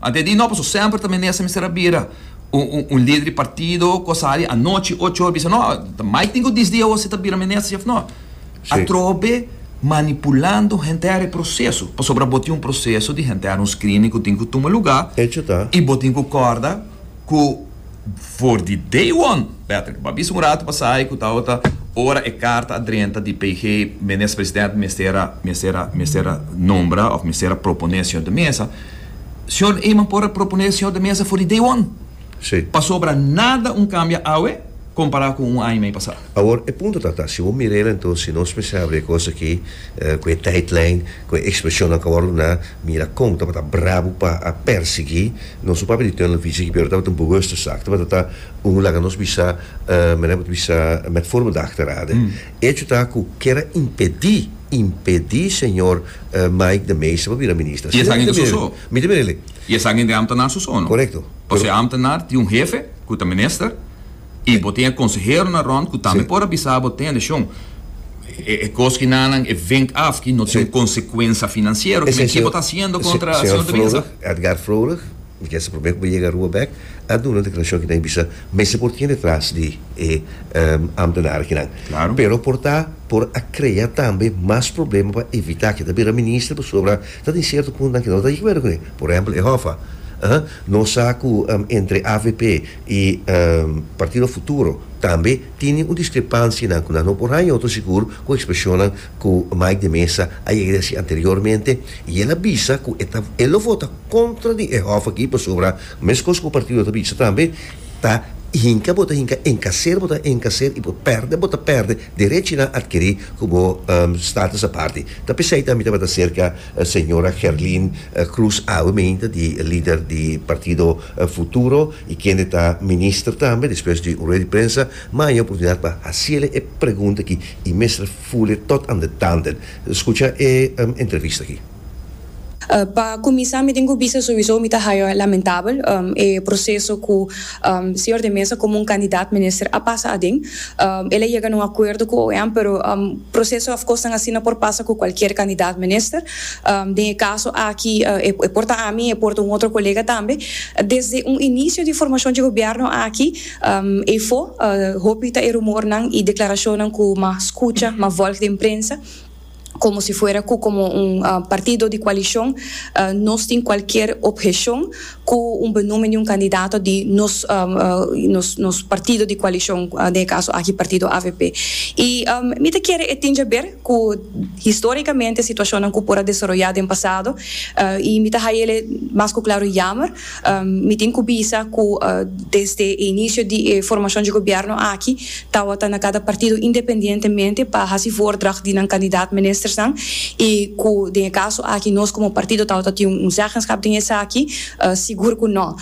antes di no pasobra semper ta minister mester a bira un lider di partido ku a sali anochi ocho or bisa no Mike tin ku disdi awo si ta bira minister si òf no. Atrobe manipulando henter e proseso, pasobra bo tin un proseso di henter, un screening ku tin ku tuma lugá i bo tin ku kòrda ku for di day one, Patrick, bo a bisa un ratu pasai ku tabata ora e karta a drenta di PG Minister Presidente mester a mester a mester a nombra òf mester a proponé Señor de Meza, Señor Eman por a proponé Señor de Meza for di day one, pasobra nada un kambia awe kompará ku un aña i mei pasá. Awor e punto ta ta, si bo mira el enton si nos mester habri e cos aki cu e tijdlijn, cu e expresionnan cu a word duna, mira con tabata brabo pa a persegui nos su papia di tuerna visie aki pero tabata un bewuste zaak, tabata ta un laga nos bisa mira bo ta bisa met forma di achterade. Hecho ta cu ker a impedi, impedi señor Mike de Meester pa bira minister. Asina mi ta mira el, mi ta mira el. Y esan ente ambtenar sosono. Correcto. Pero si e ambtenar tin un hefe cu ta minister. I bo tin e konseheronan rònt ku tambe por a bisa bo, Tende, shon, e kos ki na nan e vink af ki no tin un konsekuensia finansiero, kimen ke bo ta hasiendo kontra señor de Binza? Señor Edgar Froelich, mi kere sa promé ku bo yega Aruba bèk, a duna un deklarashon ki na bai bisa mester por tin detras di e ámtenaren kinan. Klaro. Pero por ta por a krea tambe mas problema pa evitá ke ta bira minister pasobra ta tin sierto puntonan ke no ta di akuerdo kuné. Por ehèmpel e hòf a. Nos sa ku entre avp. Y Partido Futuro tambe tini un discrepancianan cu nan no por haña otro sigur cu expresionnan cu Mike de Meza a yega di haci anteriormente y el a bisa cu e ta e lo vota contra di e hof aki pasobra mescos cu partido ta bisa tambe ta hinca bo ta hinca encacer bo ta encacer y bo perde bo ta perde derechinan adquiri cu bo status aparte ta pesey tambe tabata cerca Señora Gerlin Cruz Awe Meinta di lider di partido Futuro y kende ta minister tambe despues di un rueda di prensa maya oportunidad pa haciele e pregunta aki y mester fule tot an detanden. Scucha e entrevista aki. Pa cuminsa mi tin cu bisa sowiso mi ta haya lamentabel e proceso cu Señor de Meza como un candidat minister a pasa aden. El a yega na un acuerdo cu OM pero Proceso afkosnan asina por pasa cu cualkier candidaat minister. Den e caso aki e por ta ami y e por ta un otro colega tambe. Desde un inicio di formacion dje gobierno aki efo hopi ta e rumornan y declaracionnan cu ma scucha, ma volg den prensa, como si fuera cu como un partido di coalicion nos tin cualkier obhecion cu un benoemen di un candidato di nos nos partido di coalicion, den e caso aki partido avp. Y mi ta kere e tin jaber cu historicamente situacionnan cu por a desaroya den pasado y mi ta hayele mas cu claro yamer, mi tin cu bisa cu desde e inicio di e formacion dje gobierno aki Tawata na kada partido independientemente pa hasi voordracht di nan kandidaat ministersnan i ku den e kaso aki nos komo partido tawata tin un zeggenschap den esaki? Sigur ku no.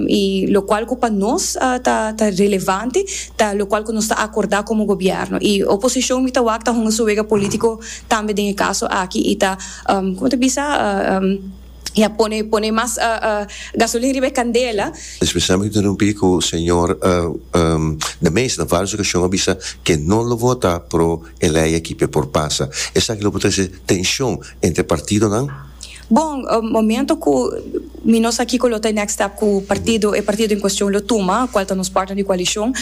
I lokual ku pa nos ta ta relevante ta lokual ku nos ta akordá komo gobièrnu i oposishon mi ta wak ta hunga su wega polítiko tambe den e kaso aki i ta, komo ta bisa? y a pone pone mas gasolin riba e candela. Especialmente ta rumpi cu señor de Meester na varios ocasion a bisa que no lo vota pro e ley aki pe por pasa. Esaki lo por trece tension entre partidonan. Bon, momento cu mi no sa kico lo ta e next step cu partido e partido en cuestion lo tuma, cual ta nos partner di coalicion,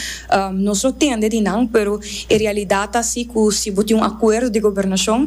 nos lo tende di nan, pero e realidad ta si cu si bo tin un acuerdo di gobernacion,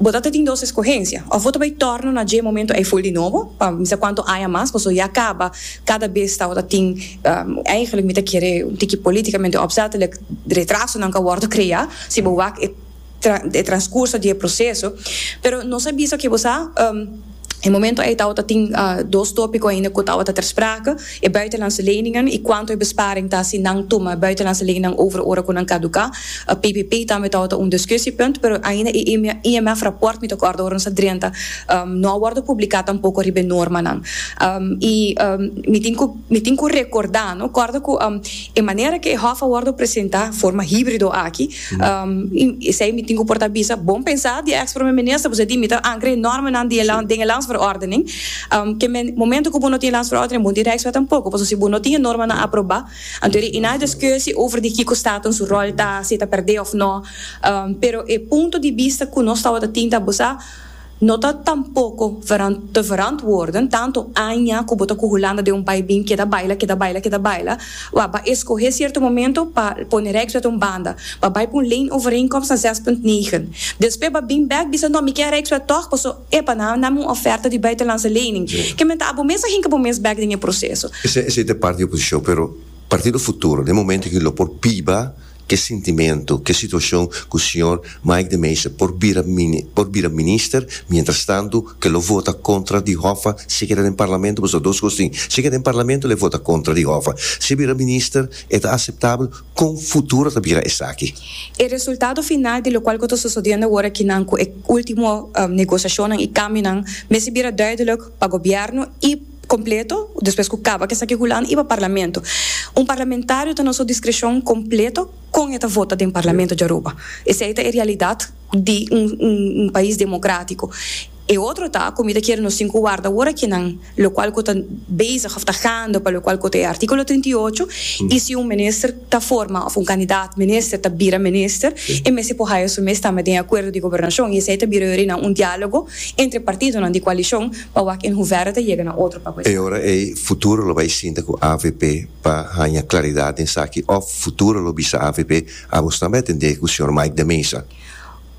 Bo ta ta tin dos escogencia, of bo ta bay torno na dje momento ey full di nobo, pa mi sa cuanto aña mas, paso ya caba, cada bes tabo ta tin, eigenlijk mi ta kere un tiki politicamente opzettelijk, retrasonan ca wordo crea, si bo wak e transcurso di e proceso, pero nos a bisa ke bo sa. E momento ei tabata tin dos topiko ainda ku tabata ter sprake, e buitenlandse leningen i kuantu e besparing ta si nan tuma e buitenlandse leningen over ora ku nan kaduká. PPP tambe tabata un diskusiepunt, pero ainda e IMF raport, mi ta kòrda ora nos a drenta, no a wòrdu publiká tampoko riba e normanan. I mi tin ku mi tin ku rekordá, no, kòrda ku e manera ku e hòf a wòrdu presentá, forma híbrido aki, Esei mi tin ku por ta bisa, bon pensa di e ex Prome Minister, bo sa di mi ta ankere e normanan di e land den e Landsverordening, ke men momento ku bo no tin e Landsverordening bo no tin Rijkswet tampoko, pasobra si bo no tin e normanan aproba, anto e na diskusi over di kiko Staten su ròl ta, si e ta pèrdè òf nò, pero e punto di bista ku nos tabata tin ta bo sa, No ta tampoko te verantwoorden tanto aña ku bo ta ku Hulanda den un bai bin keda baila, keda baila, keda baila. Wak, ba eskohé sierto momento pa pone Rijkswet un banda. Ba bai pa un lane overeenkomst na zes punt negen. Despues ba bin bèk bisa, No, mi ke Rijkswet tòg paso, epa, nan a nam un ofèrta di buitenlandse lening. Ke men ta abo mes a hinka bo mes bèk den e proseso. Esei ta e parti di oposishon, pero Partido Futuro den momento aki lo por biba. Ke sintimentu, ke situashon ku señor Mike de Meyster por bira por bira minister, mientras tantu ke lo vota kontra di Hoffa si e keda den parlamento, pasobra dos kos tin, si e keda den parlamento lo vota kontra di Hoffa, si e bira minister e ta aseptabel, kon futuro ta bira esaki? E resultado final di lokual ku ta sosodiendo awor akinan ku e ultimo negosiashonnan i kambionan mester bira duidelik pa gobièrnu i. completo despues cu caba cu esaki hulan y pa parlamento un parlamentario ta na su discrecion completo con e ta vota den parlamento dja Aruba esey ta e realidad di un pais democratico e otro ta cu mi ta kere nos tin cu warda awor aki nan locual cu ta bezig of ta gaande pa locual cu ta e articulo trinta y ocho y si un minister. ta forma of un candidaat minister ta bira minister, e mester por haya su mes tambe den e acuerdo di gobernacion y esey ta bira yori na un dialogo entre partidonan di coalicion pa wak en hoeverre ta yega na otro papel. E ora ey futuro lo bay sinta cu avp pa haya claridad den esaki of futuro lo bisa avp, abos tambe a tende cu señor Mike de Meza.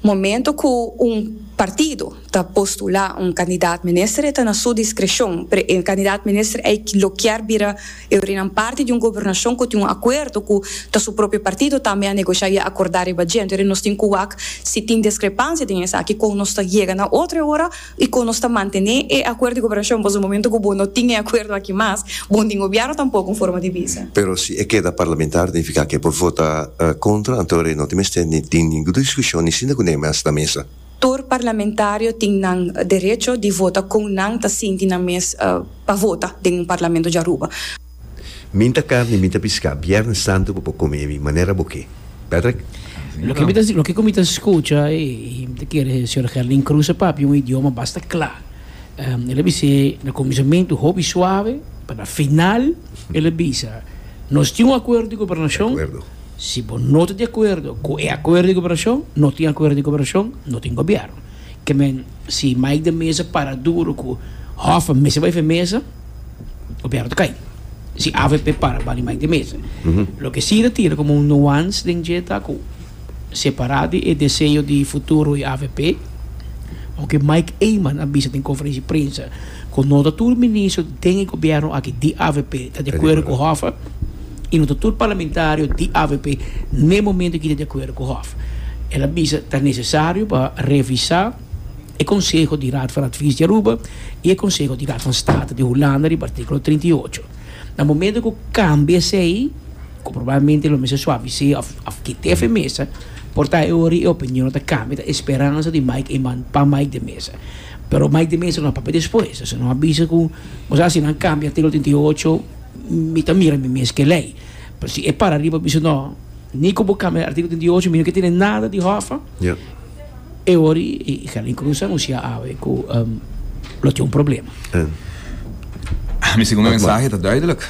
Momento cu un partido ta postula un candidaat minister e ta na su discrecion, pero e candidaat minister ey lo kier bira Eurinan parti di un gobernacion cu tin un acuerdo cu ta su propio partido tambe a negocia y a acorda riba djento. Entonces nos tin cu wak si tin discrepancia den esaki con nos ta yega na otro e ora. y con nos ta mantene e acuerdo di cooperacion, pasobra momento cu bo no tin e acuerdo aki mas, bo no tin gobierno tampoco en forma di visa. Pero si e keda parlamentario nifica cu e por vota contra, anto e no tin mester ni tin ningun discusion ni sinda cu ne mas na mesa. Tur parlamentario tin nan derecho di vota con nan ta sinti nan mes pa vota den un parlamento di Aruba. Min ta carni min ta piscá Viernes Santo bo por come mi manera bo ke Patrick? Loke mi ta loke ku mi ta skucha i mi ta kere Señor Gerlin Cruz a papia un idioma basta kla. El a bis'é na kuminsamentu hopi suave pa na final el a bisa, Nos tin un akuerdo di gobernashon, si bo no ta di akuerdo ku e akuerdo di gobernashon no tin akuerdo di gobernashon, no tin gobièrnu. ke men si Mike den mesa para duro ku Hoffa mester bai fen mesa Gobierno ta kai si avp para bali Mike den mesa loke si ta tira komo un nuance den dje ta ku separá di e deseo di futuro di avp loke Mike Eman a bisa den konferensia prensa. Cu no ta tur ministro den e gobierno aki di avp ta di acuerdo cu Hoffa y no ta tur parlamentario di avp n'e momento aki ta di acuerdo cu Hoffa. El a bisa ta necesario pa revisa e conseho di Raad van Advies di Aruba y e conseho di Raad van State di Hulanda riba articulo trinta y ocho. Na momento cu cambia esey cu probablemente lo mester suavis'e of of kit'e fen mesa por ta e ora y e opinionnan ta cambia ta e speransa di Mike Eman pa Mike den mesa. Pero mai di mester no a papia despues. Esei no a bisa ku nos a hasi nan kambia artíkulo trinta i ocho, mi ta mira mi mes ke lei. Pero si e para riba bisa no, ni ku bo kambia artíkulo trinta i ocho mi no ke tene nada di hòffa, e wòrdu i Carlin Cruz a anunsiá awe ku lo tin un problema. Mi segundo mensahe ta duidelik.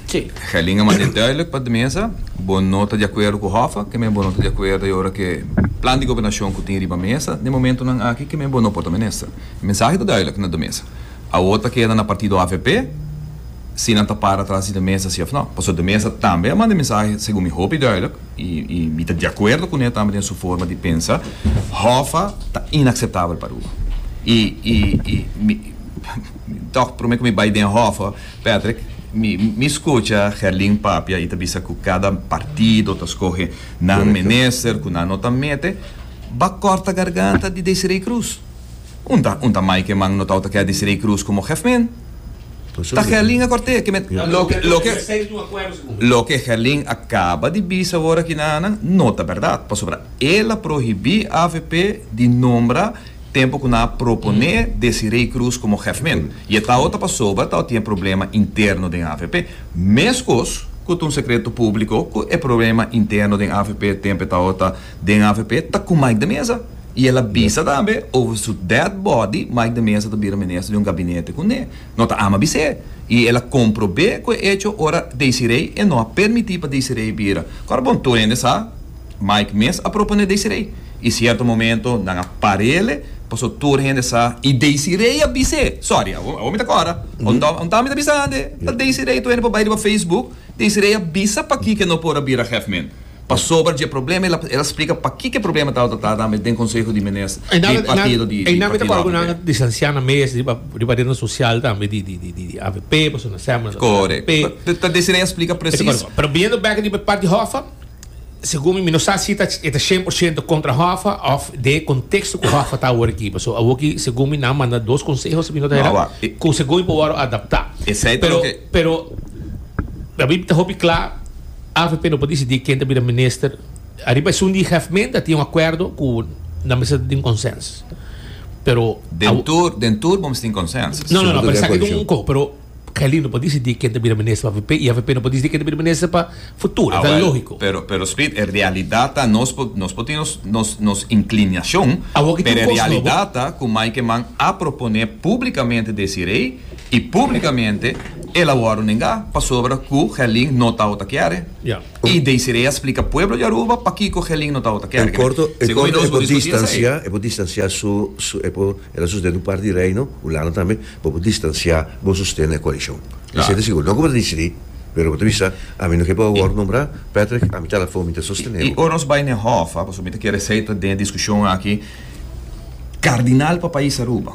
Tje. Gellinga manda duidelijk pa de mesa, Bo no ta di akuerdo ku Hoffa, keme bo no ta di akuerdo i ora ke plan di gobernashon ku tin riba mesa den momentunan aki, keme bo no por ta minister. E mensahe ta duidelijk na de mesa. Awor ta keda na partido avp si nan ta para tras di de mesa si òf no. Pasobra de mesa tambe a manda e mensahe, segun mi, hopi duidelijk i i mi ta di akuerdo kuné tambe den su forma di pensa, Hoffa ta inakseptabel pa Aruba. I i i mi tòg promé ku mi bai den Hoffa. Patrick, Mi mi scucha Gerlin papia y ta bisa cu cada partido ta scoge nan minister cu nan no ta mete, ba corta garganta di Desiree Cruz. Un ta un ta mai que man no tau ta keda Desiree Cruz como Gefmin. Ta Gerlin a corte que met loke loke loke Gerlin a caba di bisa ora aki nan nan no ta berdad pasobra el a prohibi avp di nombra Tempo cu nan a propone Desiree Cruz como Gef-Min. Y e traho ta pasoba ta otie problema interno den avp. Mescos cu ta un secreto publico cu e problema interno den avp tempe taho ta den avp ta cu Mike de Meza. Y el a bisa tambe over su dead body Mike de Meza ta bira minister di un gabinete cu ne no ta ama bis'e. Y el a comprobe cu e hecho ora Desiree e no a permiti pa Desiree bira. Cora bon tur hende sa. Mike mes a propone Desiree y cierto momento nan a parele paso tur hende sa y Desiree a bis'e, sorry awor mi ta cora, ontao mi ta bisa hende ta Desiree tur hende por bay riba Facebook, Desiree a bisa pakico e no por a bira Hef men pasobra dje problema el a splica pakico e problema tabata ta tambe den conseho di menes di partido di AVP. Correcto ta Desiree a splica precies. Segun mi, mi no sa si e ta shen por shento kontra Hoffa òf den e konteksto ku Hoffa ta awor aki. Pasobra awor aki, segun mi, nan manda dos konseho, si mi no ta hera, ku segun mi por wòrdu adaptá. Pero, pero, a mi ta hopi kla, avp no por disidí ken ta bira minister ariba esun di hèfmenta. A tin un akuerdo ku nan mester ta tin konsèns, pero. Den tur, den tur bo mester tin konsèns. No, no, no, pero esaki ta un koko, pero. Kelly no por disidí ken ta bira minister pa avp i avp no por disidí ken ta bira minister pa futuro. Esei lógiko. Pero, pero Smith, e realidat ta nos por, nos por tin nos, nos, nos inclinacion, Awor ki pero tin e cos nobo. realidat ta cu Mike Mann a proponé públicamente Desiree i públicamente el a wòrdu nengá pasobra cu Gelin no tabata ta kere. Ya. I Desiree a splica pueblo di Aruba pakico Gelin no tabata ta kere. En corto, en Segun mi corto nos e por por discuti esei. distancia, e por distancia su, su, e por. E ta sustenta un parti di Reino Hulanda tambe pa bo distansiá bo sosten na e koalishon. Esei ta sigur. No ku bo ta disidí, pero bo ta bisa, ami no ke pa wòrdu nombrá, Patrick a mi tala afó mi ta sostené bo. I ora nos bai na e hòf, pasobra mi ta kere esei ta den e diskushon aki, kardinal pa pais Aruba.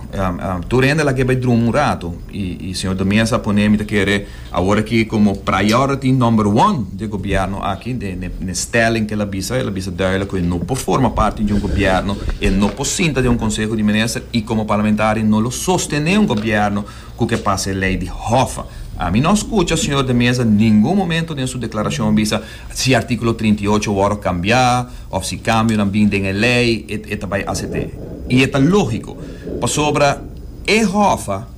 Tur hende a laga e bai druma un ratu i señor de Mesa a pon'é mi ta kere Awor aki komo priority number one di e gobièrnu aki, den e stèling ku el a bisa, el a bisa duidelik ku e no por forma parti di un gobièrnu, e no por sinta den un konseho di minister i komo parlamentario no lo sostené un gobièrnu ku ke pasa e lei di hòffa. Ami no a skucha señor de Meza ningun momento den su deklarashon bisa si artíkulo trinta i ocho wòrdu kambiá òf si kambionan bin den e lei e ta bai acept'é. I e ta lógiko pasobra e hòffa